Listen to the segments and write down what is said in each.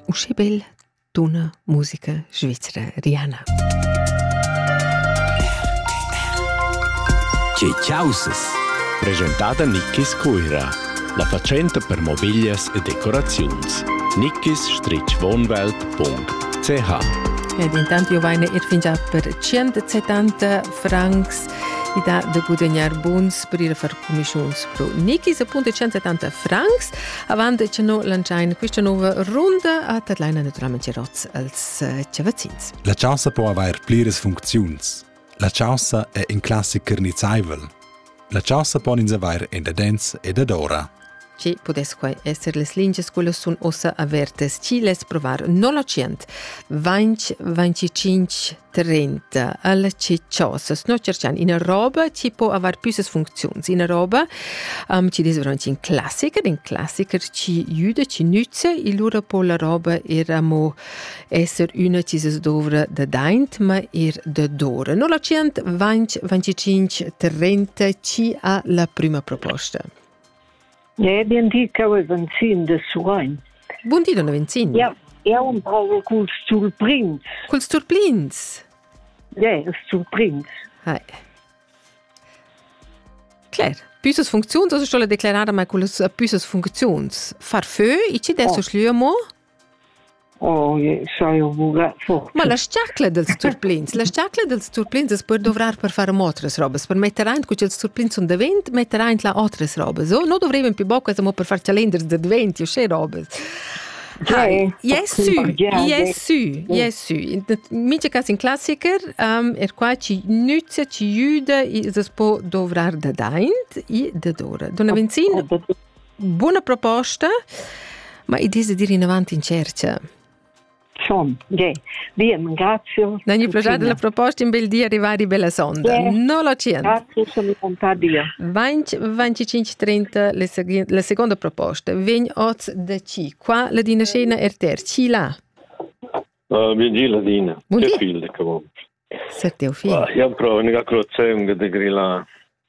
Uschi bel d'una musica svizra riana. Tge chausas? Presentada Nickis Cuira, la fatschenta per mobiglias e decoraziuns. nickis-wohnwelt.ch Ed intanto io vaine ir fingià per 170 francs i dà da gudagnar buns per ir a far cumischuns pro Nikis appunto 170 francs avant che no lanciain questa nuova runda a Tatlaina naturalmente rots als eh, chavazins. La chaussa po avair pliras funcziuns. La chaussa è in classic carnizaivel. La chaussa pon ins avair in da dents e dadora. che pudess quai esser las lingias quellas sun ussa avertas, chi less provar nolocient 20-25 30 al cicciosas. No cerchan ina roba che può aver piusas funziuns, ina roba um, che des veramente in classiker, in classiker ci juda, ci nütze, e lura può la roba era mo esser una che se dovra da daint, ma er da dora. Nolocient 20-25 30 ci ha la prima proposta. Ja, bien di, cheu è Venzin de Surein. Bun di, donna Venzin. Ja, eu un provo culs turprins. Culs turprins? Ja, yeah, turprins. Hai. Claire, püssas funcziuns, also sto la declarada mai culas püssas funcziuns. Far fö, i ci des oh. schlüemo? Oh, Ma la sciarcla dels turplins, la sciarcla dels turplins es per dovrar per far amo otras robas, per metter aint, cu ch'els turplins sun davent, metter aint là otras robas. O no dovrivan più boccas amo per far calenders da adventi, uschè robas. Hai, yes sü, yes sü, yes sü. Mincha cas in classiker, um, er qua ci nüzza, ci jüda, es es po dovrar da daint e da dora. Donna Venzin, Buna proposta, ma i dise dir inavanti in cerca. Schon, ge. Bien, grazie. Non gli piace la proposta in bel dia arrivare bella sonda. Yeah. Non lo cient. Grazie, sono contenta. 20 25 30 la seconda proposta. Ven oz da ci. Qua la dina scena RTR. Ci là. Uh, bien gi la dina. Che fiel che vuoi. Se te ho figlio. Io provo, mica crozzenga de grilla.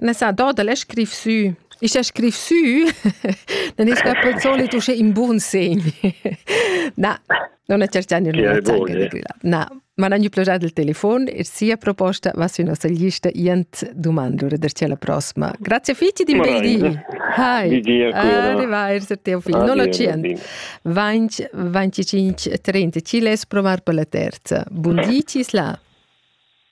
Messadur da l'he scriv sü. Ich he scriv sü, non es que pel solit usche in bun segn. Na, non è certa nel mio Na, ma non gli piacerà il telefono e sia proposta va sui nostri lista ient domandure der la prossima. Grazie figli di un bel di. Hi. Arrivederci teo figlio. Non accient. 20 25 30 ci les provare per la terza. Buondì ci là.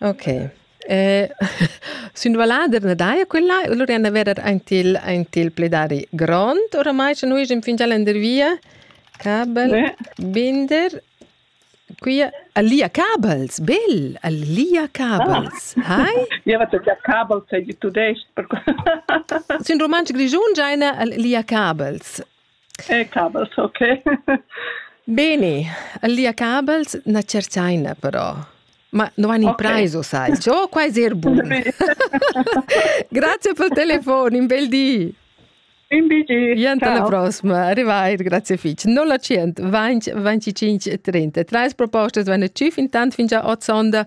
Ok. Sün vallader na daja quella, lura ena vera aint il aint il pledari grond oramai scha nus egen fingià lendervia. Cabel, binder. Quia a Lia Cabels, bel, a Lia Cabels. Hai? Ja, wat ja Cabels sei di tudest. Sün rumantsch grischun giaina a Lia Cabels. E cabels, ok. Bene, lia cabels na cerzaina però. Ma no han impraise, okay. sai. Ciò qua è er bun. Grazie per il telefono, un bel di. Un BG. Gente alla prossima, arrivai, grazie fitch. 000 25 30. Treis propostas vanno ci fin tant fin già od sonda